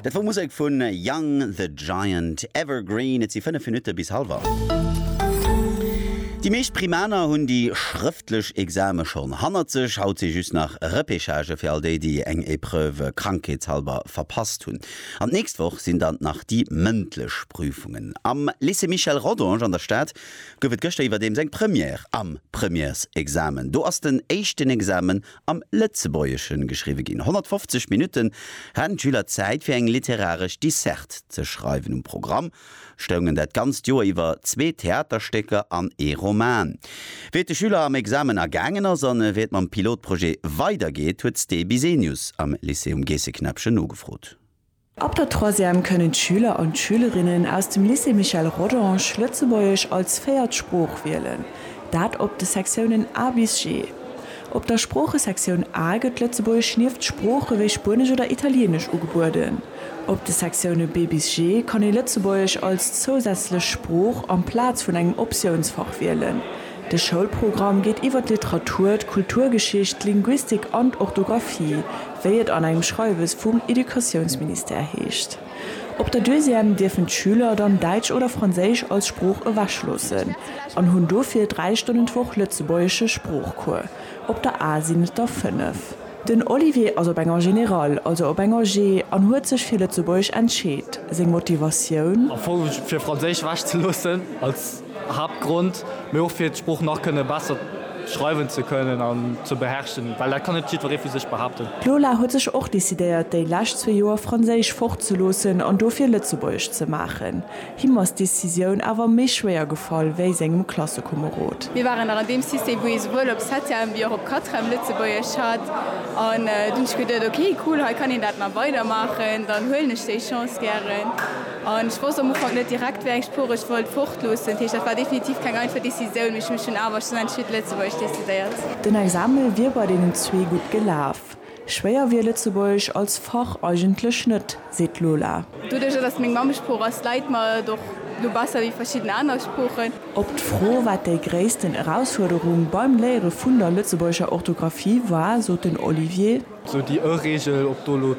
Dat wor Musek vu Young the Giant, Evergreen. Et si 5 Minutte bis halwer 8. Déi meescht Primaner hunn déi schrëftlech Exame schonn hannert sech. Haut si just nach Repechagë fir all déi, déi eng Epreuve krankheetshalber verpasst hunn. An d'nächst Woch sinn dann nach déi mëndlech Prüfungen. Am Lycée Michel Rodange an der Stad gouf et gëschter iwwerdeems eng Première am Premièresexamen. Do ass den éischten Examen am Lëtzebuergeschen geschriwwe ginn. 150 Minutten haten d'Schüler Zäit fir eng literaresch Disserte ze schreiwen. Um Programm stoungen dat ganzt Joer iwwer zwee Theaterstécker an ee Roman. Wéi et de Schüler am Examen ergaangen ass an wéi et mam Pilotprojet weidergeet, huet d'Sté Bisenius am Lycée um Geesseknäppchen nogefrot. Ab der Troisième kënnen d'Schüler an d'Schülerinnen aus dem Lycée Michel Rodange Lëtzebuergesch als véiert Sprooch wielen, dat op de Sektiounen A bis G. Op der Sproochesektioun A gëtt Lëtzebuergesch nieft Sprooche wéi Spuenesch oder Italieenesch ugebueden. Op de Sektioune B bis G kann ee Lëtzebuergesch als zousätzlech Sprooch amplaz vun engem Optiounsfach wielen, De Schoulprogramm geet iwwer d'Literatur, d'Kulturgeschicht, d'Linguistik an d'Orthografie, wéi et an engem Schreiwes vum Educatiounsministère heescht. Op der Deuxième dierfen d'Schüler dann Däitsch oder Franséisch als Sprooch ewechloossen an hunn dofir dräi Stonnen d'Woch lëtzebuergesche Sproochcours, op der A sinn et der fënnef. Den Olivier ass op enger Generale, also op enger G, an huet sech fir Lëtzebuergesch entscheet. Seng Motivatioun? Am Fong fir Franséisch ewechzeloossen. Haaptgrond, mee och fir d'Sprooch nach kënne besser schreiwen ze kënnen an ze beherrschen, well dat kann net jiddweree vu sech behaapten. D'Lola huet sech och decidéiert, déi lescht zwee Joer Franséisch fortzeloossen an dofir Lëtzebuergesch ze maachen. Him ass d'Decisioun awer méi schwéier gefall wéi sengem Klassekomerod. Mir waren nach an deem System, wou ee souwuel op Septième wéi och op Quatrième Lëtzebuergesch hat an dunn hunn ech geduet, ok cool, hei kann een dat nach weidermaachen, dann huelen ech déi Chance gären. An ech wosst am Ufank net direkt, wéi eng Sprooch ech wollt fortloossen. Dat heescht, dat war definitiv keng einfach Decisioun, mee ech hu mech dunn awer schlussendlech fir d'Lëtzebuergesch decidéiert. Den Exame wier bei deenen zwee gutt gelaf. Schwéier wier Lëtzebuergesch als Fach eigentlech net, seet d'Lola. Doduerch, datt et meng Mammesprooch ass, läit mer et och elo besser wéi verschidden aner Sproochen. Op d'Fro, wat déi gréissten Erausfuerderung beim Léiere vun der lëtzebuergescher Orthografie war, sot den Olivier. Sou déi ë Reegel, ob do elo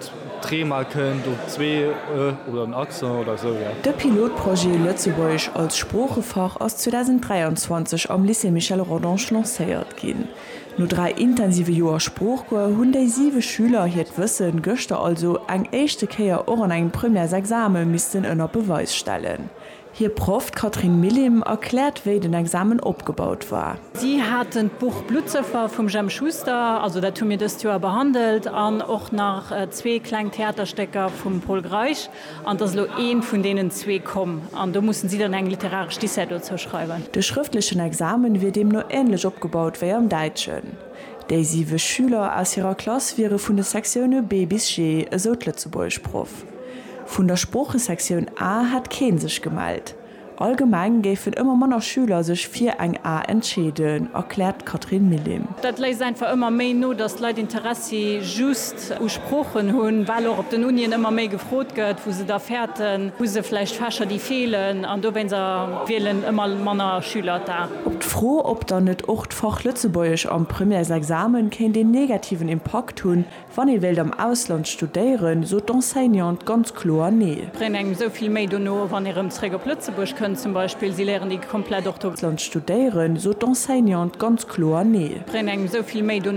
d'ree mol kënnt, op zwee ë oder den Accent oder esou, jo. De Pilotprojet Lëtzebuergesch als Sproochefach ass 2023 am Lycée Michel Rodange lancéiert ginn. No dräi intensive Joer Sproochcours hunn déi siwe Schüler hiert Wësse gëschter also eng éischte Kéier och an engem Premièresexame missten ënner Beweis stellen. Hir Proff, d'Catherine Millim, erkläert, wéi den Examen opgebaut war. Si haten d'Buch Bluttsëffer vum Jemp Schuster, also dat hu mir dëst Joer behandelt, an och nach zwee kleng Theaterstécker vum Pol Greisch, an et ass elo eent vun deenen zwee komm, an do mussen si dann eng literaresch Dissert dozou schreiwen. De schrëftlechen Examen wier deemno änlech opgebaut wéi am Däitschen. Déi siwe Schüler aus hirer Klass wiere vun de Sektioune B bis G, esou d'Lëtzebuergesch-Proff. Vun der Sproochesektioun A hätt kee sech gemellt. Allgemeng géifen ëmmer manner Schüler sech fir eng A entscheeden, erkläert d'Catherine Millim. Dat léisst einfach ëmmer méi no, datt d'Leit Interessi just u Sproochen hunn, well och op den Unien ëmmer méi gefrot gëtt, wou se da fäerten. Hu se vläicht Fächer, déi feelen? An dowéinst wielen ëmmer manner Schüler d'A. Op d'Fro, ob dann net och d'Fach Lëtzebuergesch am Premièresexamen kéint een negativen Impakt hunn, Wann ee wéilt am Ausland studéieren, sot d'Enseignante ganz kloer Nee. Bréngt engem esou vill méi dono, wann ee rëm zréck op Lëtzebuerg kënnt, zum Beispill, si léieren déi komplett Ortho. Land studéieren, sot d'Enseignante ganz kloer Nee. Bréngt engem esou vill méi dono.